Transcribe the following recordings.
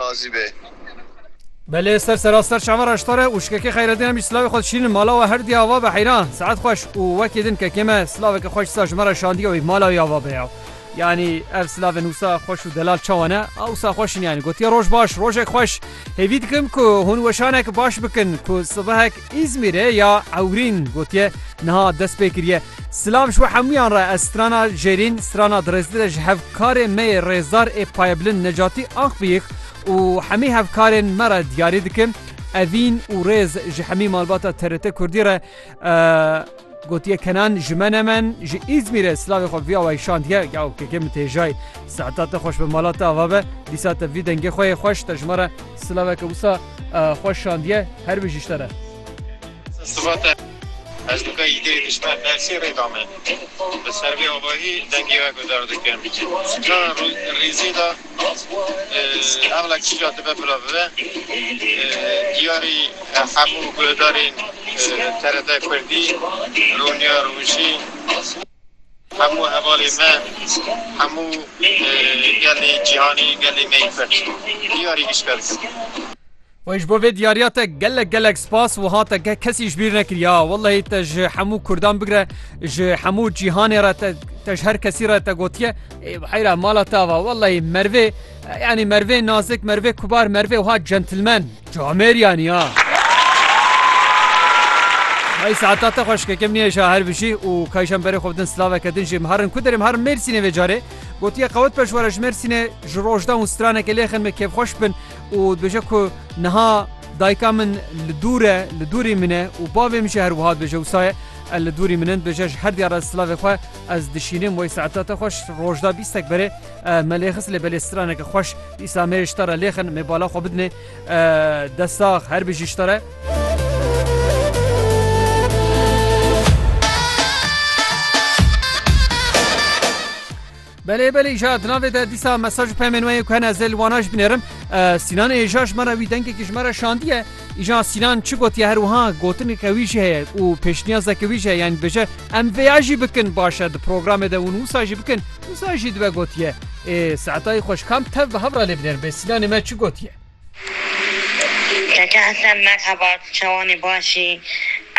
Razî be. Belê ser sera ser çava re ştore û şikekê Xeyredîn em jî silavê xwe dişînin mala we her diya va be heyran saet xweş û wekî din kekê me silaveke xweş disa ji me re şandiya wî mala wî ya va be ya yanî ev silavên wisa xweş û delal çawa ne a wisa xweş in yanî gotiye roj baş rojek xweş hêvî dikim ku hûn weşanek baş bikin ku sibehek Îzmîrê ya Ewrîn gotiye niha dest pê kiriye. Silav ji we hemûyan re ez strana Jêrîn, strana Dirêzdire ji hevkarê me yê rêzdar ê Payebilind Necatî Akbiyik û hemî hevkarên me re diyarî dikim. Evîn û rêz ji hemî malbata TRT Kurdî re. Gotiye Kenan ji me ne men ji Îzmîrê silavê xwe viya weyşandiye yaw keke min tê jay seheta te xweş be mala te ava be dîsa te vî dengê xwe yê xweş te ji me re silaveke wisa xweş şandiye her bi jî te re. Siva te ez nika îdirê dijber dersê rê da me. Li ser vê avahî dengê we guzer dikim. Ka rîzê da. Ewlek çîka dibe bila bibe. Diyarî hemû guhdarên TRT Kurdî, Rûniya Rûjî, hemû hevalên me, hemû gelê cîhanî, gelê me yê Kurd diyarî gişt kerdin. Wey ji bo vê diyariya te gelek gelek spas wiha te ke kesî ji bîr nekiriya wellehî te ji hemû Kurdan bigire ji hemû cîhanê re te te ji her kesî re te gotiye heyra mala te ava wellehî mervê yanî mervê nazik mervê kubar mervê wiha centilmen camêr yanî ya Ay saata te xweş ke kem nêşa her bijî û kayşan berê xwe din slaveke din jê miharin ku derim her mêrsînê vê carê gotiye qewet peşwara ji mêrsînê ji rojdan û straneke lêxin me kêfxweş bin Û dibêje ku niha dayika min li dûr e, li dûrî min e û bavê min jî her wiha dibêje wisa ye, ev li dûrî min in, dibêje ji her diyara silavê xwe ez dişînim wey saeta te xweş rojda bîstek berê me lê xist lê belê straneke xweş dîsa me yê ji te re lêxin mê bala xwe bidinê destsax her bijî ji te re. Belê belê îja di navê de dîsa mesaj û pemên we yên ku hene ez ê li wana jî binêrim. Sînan ê îja ji me re wî dengekî ji me re şandiye. Îja Sînan çi gotiye her wiha gotineke wî jî heye û pêşniyazeke wî jî heye yanî dibêje em vê ya jî bikin baş e di programê de hûn wisa jî bikin wisa jî dibe gotiye ê Seetayî xweş kam tev bi hev re lê binêrim bê Sînanê me çi gotiye. Keke Hesen Merheba tu çawanê baş î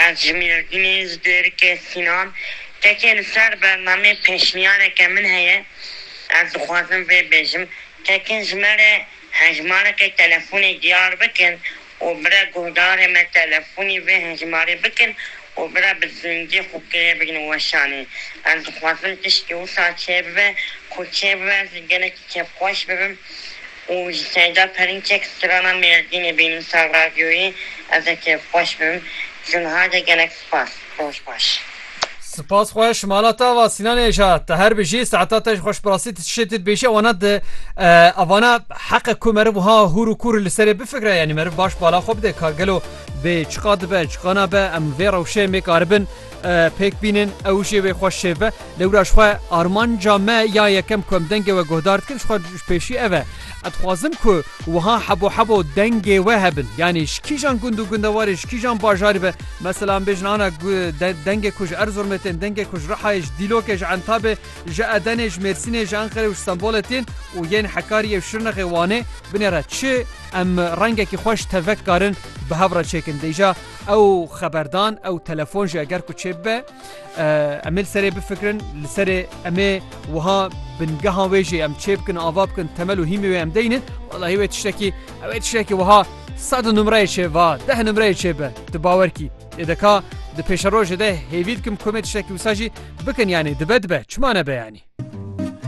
ez ji Mêrdînê ji Dêrikê Sînan kekê li ser bernamê pêşniyareke min heye ez dixwazim vê bêjim kekin ji me re hejmarekê telefonê diyar bikin û bire guhdarê me telefonî vê hejmarê bikin û bire bi zingî xwe pê bigrin weşanê ez dixwazim tiştî wisa çêbibe ku çêbibe ez li gelekî kêfxweş bibim Û ji Seyda Perinçek strana Mêrdînê bênûsa radyoyê ez ê kêf xweş bim. Ji niha de gelek spas. Roj baş. Spas xweş mala te ava Sînan ê ja te her bijî saeta te ji xweş bi rastî ti ti şê ti dibêjî ew ne di evana heqe ku meriv wiha hûr û kûr li serê bifikre yanî meriv baş bala xwe bide ka gelo bê çiqa dibe çiqa nabe em vê rewşê mêkaribin Pêk bînin ew jê wê xwe şêve. Lewra ji xwe armanca me ya yekem ku em dengê we guhdar dikin ji xwe ji pêşî ev e. Ez dixwazim ku wiha hebo hebo dengê we hebin. Yanî ji kîjan gund û gundewarê ji kîjan bajarî be mesela em bêjin ana dengê ku ji Erzurumê tên, dengê ku ji Rihayê, ji Dîlokê, ji Entabê, ji Edenê, ji Mêrsînê, ji Enqerê û ji Stenbolê tên û yên Hekariyê û Şirnexê Wanê binêre çi em rengekî xweş tevek karin bi hev re çêkin. Dêja Ew xeberdan ew telefon jî eger ku çêbibe em ê li serê bifikirin li serê em ê wiha bingehan wê jî em çêbikin ava bikin temel û hîmê wê em deynin wellahî wê tiştekî ew ê tiştekî wiha sed numreyê çê va deh numreyê çêbe di bawerkî ê deka di pêşerojê de hêvî dikim komê tiştekî wisa jî bikin yanî dibe dibe çima nebe yanî.